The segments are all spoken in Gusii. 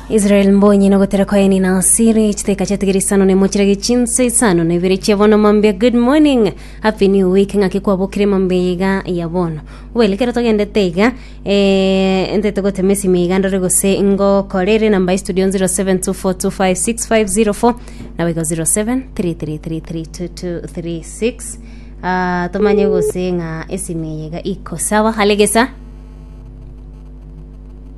Israel mbonyi nogotera kwaeni na asiri chiteka chatugera isano nemo chirage chinse isano na ibere chia bono mambia good morning happy new week ng'aki kwabokire mambia iga ya bono well kero togendete iga eh, ente togotema esimi iga ndore gose ngokorere namba istudio 0724256504 nawe go 0733332236 Ah, tomanye gose ng'a esimi iga iko sawa halegesa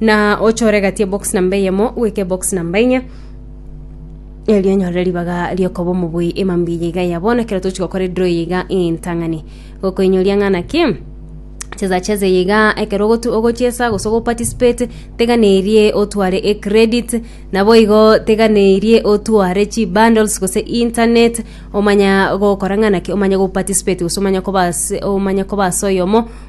na ochore egati ebox namba eyemo goika ebox namba enye erio onyorere ribaga riokoba omobui emambia eye iga ya bono ekero tochi gokora edraw eye iga entang'ani gokoinyoria ng'a naki chezacheze eye iga ekero ogotu- ogochesa gose ogoparticipate teganeirie otware ecredit nabo igo teganeirie otware chibundles gose internet omanya gokora ng'a naki omanye goparticipate gose omanye koba ase omanye koba ase oyomo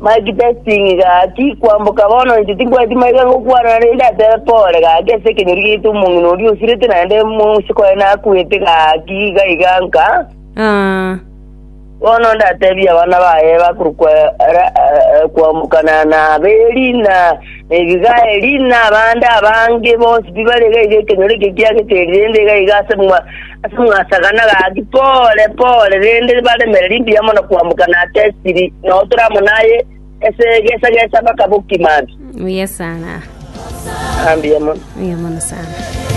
Mike testing gaki kwamboka bono inche tinkwaneti maiga ngokwana rende atebe pole gaki ase ekenyori giaito omong'ina oria osirete naende mosiko aye nakuete gaki gaiga nka Ah, bono ndatebia abana baye bakorokwa ara- eh, kwambokana na aberi na ebigaeri na abande abange bonsi pi bare gaiga ekenyoro eke kiageterire rende gaiga ase mwa Ase mwasagana gaki pore pore, rende baremererie mbuya mono kwamboka na ase esiri, na otora amo naye ase egesa gesa mpaka bokimansu. Buya sana. Ah, mbuya mono. Buya mono sana.